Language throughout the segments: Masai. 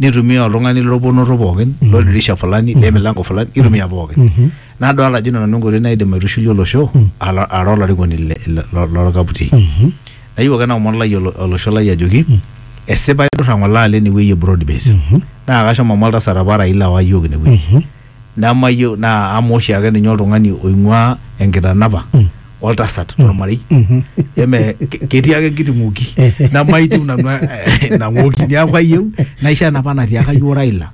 nitumia oltung'ani lorponoto pookin loldirisha fulani lemilango fulani itumia pookin nadolta ajo ina nanu enkoitoi naidim aitushulie olosho ala- ara olarikoni le- le- lo- lorkaputi nayieu ake naomon lai olo- olosho lai ajoki esipa idurra ng'ole alo enewueji e broad base naa kashomo amu oltasat apa Raila owa yiok inewueji nemayieu naa amu oshi ake ninye oltung'ani oing'ua enkitanapa mm. oltasat mm. tormarei mm-hmm. eme ketii ake enkiti ng'oki nemaitiu nanu eh, ina ng'oki niaku ayieu naisho enapa natiaka yioo Raila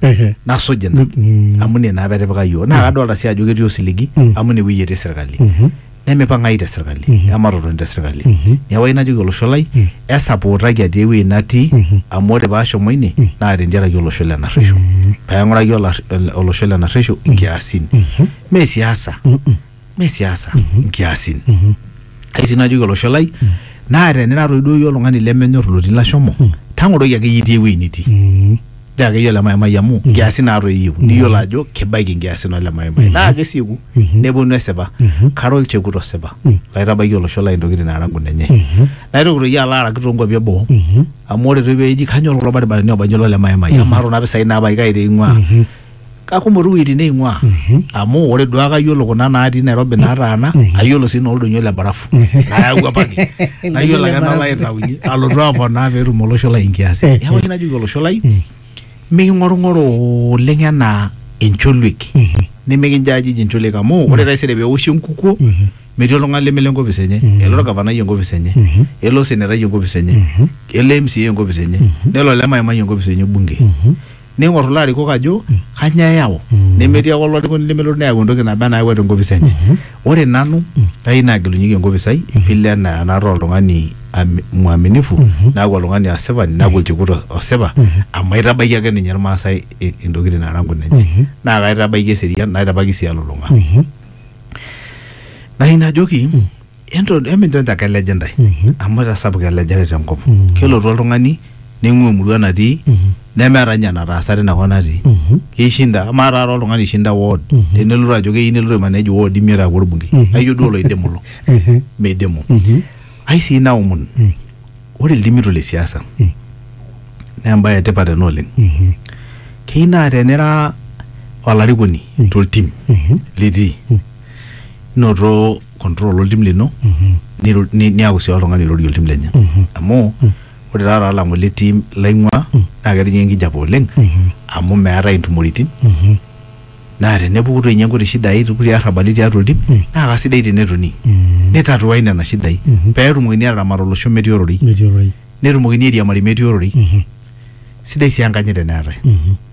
nasuj ina mm-hmm. amu ina naa petipika yioo naa kadolta sii ajo ketii osiligi amu ine wueji etii sirkali mm-hmm. nemipang'ayu te sirkali Mhm. ematotoni te sirkali Mhm. neeku ayieu najoki olosho lai Mhm. esapootaki atii ewueji natii Mhm. amu ore paashomo ine Mhm. naa tentiaraki olosho le narresho Mhm. paing'uraki olar- ol- olosho le narresho inkiasin Mhm. mee siasa Mhm. mee siasa Mhm. inkiasin Mhm. ai sii najoki olosho lai naa tenira toi duo iyie oltung'ani lemenyor lotii lashomo Mhm. tang'oroki ake iyie itii ewueji nitii Mhm. naa akeyie ole maimai amu nkiasin naatoi eyieu niyiolo ajo kibaiki nkiasin ole maimai naa kesieku neponu esipa kara olchekut osipa laitabaiki olosho lai intokitin naara nkunenye naitoki toi alo araki toonkuapi eboo amu ore toi peeji kanyor kulo baribarani oobanji olole maimai amaa kuna pisai naabaiki kai teing'ua kakumok tu wuejitin neing'uaa amu ore duake ayiolo kuna naatii Nairobi naataana ayiolo sii nooldonyo le barafu nayau apake nayiolo ake nalo aitaunye alotu aponaa peetum olosho lai inkiasin Eh, neeku eh. oshi najoki olosho lai miking'orung'oro oleng enaa encholuek nimikinjajij encholuek amu ore taisere peoshi enkukuo metii oltung'ani lemelo enkopis enye elo orgavanai enkopis enye elo osenetai enkopis enye elo MCA enkopis enye nelo olemaimai enkopis enye bunge neing'or kulo arikok ajo kanyoo eyau nemetii ake olarikoni lemelotu neyau entoki naba enaa nayawua tenkopis enye ore nanu kayieu naagelunyeki enkopis ai vile enaa enaata oltung'ani ami- mwaminifu naaku oltung'ani asipani naaku olchekut o- osipa amu aitabaiki ake ninye irmaasai i- intokitin naara nkunenye naa kaitabaiki eserian naitabaki sii elulung'a nayieu najoki Ento- eminchoncho ake eleje ntae Mhm. amu etasapuka elejare tenkop Mhm. kelotu oltung'ani neing'ua emurua natii Mhm. nemeeta ninye enataasa tinakop natii Mhm. keishinda amaa taata oltung'ani ishinda ward Mhm. tenelotu ajo keyieu nelotu aimanej ward imiet aaku orbungei Mhm. aijo duo oloidimu lo Ehe. meidimu Mhm. ai sii naomon Mm. ore ildimito le siasa Mm. naa embaye etipat ena oleng Mhm. keyieu naa tenira olarikoni Mm. toltim Mhm. litii noto control oltim lino niru- ni- niaku sii oltung'ani oirorie oltim lenye amu ore taata alang'u ele tim laing'ua naa ketijing'a enkijape oleng amu meetae intumoritin naa tenepuku toi ninye nkuti shidai kulie arrabali tiatua oltim naa kasidai tenetoni nitatuai nena shidai peetumokini ataramat olosho metii ororei metii ororei netumokini airiamari metii ororei sidai sii enkanyit teneetae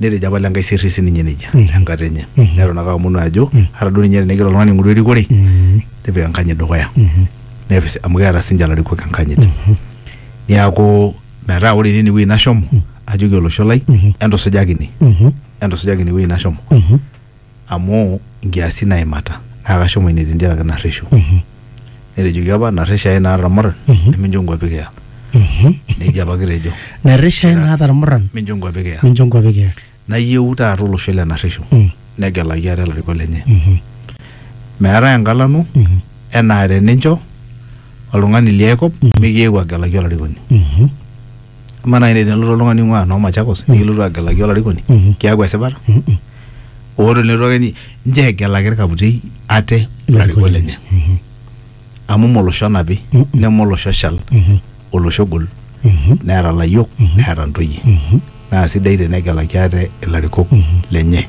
Netejo apa Lenkai sirri si ninye nejia mm. tenkata enye mm -hmm. neton ake aomonu ajo mm -hmm. ata duo ninye tenegira oltung'ani aing'oru erikore mm -hmm. tipika enkanyit dukuya mm -hmm. nepis amu keeta sinche ilarikok enkanyit mm -hmm. niaku metaa ore tine wueji nashomo mm -hmm. ajoki olosho lai mm -hmm. entusujaki ine mm -hmm. entusujaki ine wueji nashomo mm -hmm. amu nkiasin naimata naa kashomo ine tentiaraki narreshu Mhm. netejoki apa narresh ae naata irmuran Mhm. nemincho nkuapi kiya Mhm. nejia apa kitejo narresha Kira- naata irmuran mincho nkuapi kiya mincho nkuapi kiya nayieu taata olosho le narreshu Mm. negelaki ate ilarikok lenye Mhm. meetae enkalano Mhm. enaa tenincho oltung'ani liae kop mikiewuo agelaki olarikoni Mhm. Amaa naaji naaji tenelotu oltung'ani oing'uaa noo Machakos nikilotu agelaki olarikoni Mhm. kiaku esipata Mhm. oo tenelotu ake ni- ninche egelaki irkaputei ate ilarikok lenye Mhm. amu mme olosho onapi Mhm. neme olosho oshal Mhm. olosho ogol Mhm. neeta ilayiok neeta intoyie Mhm. naa sidai tenegelaki ate ilarikok lenye.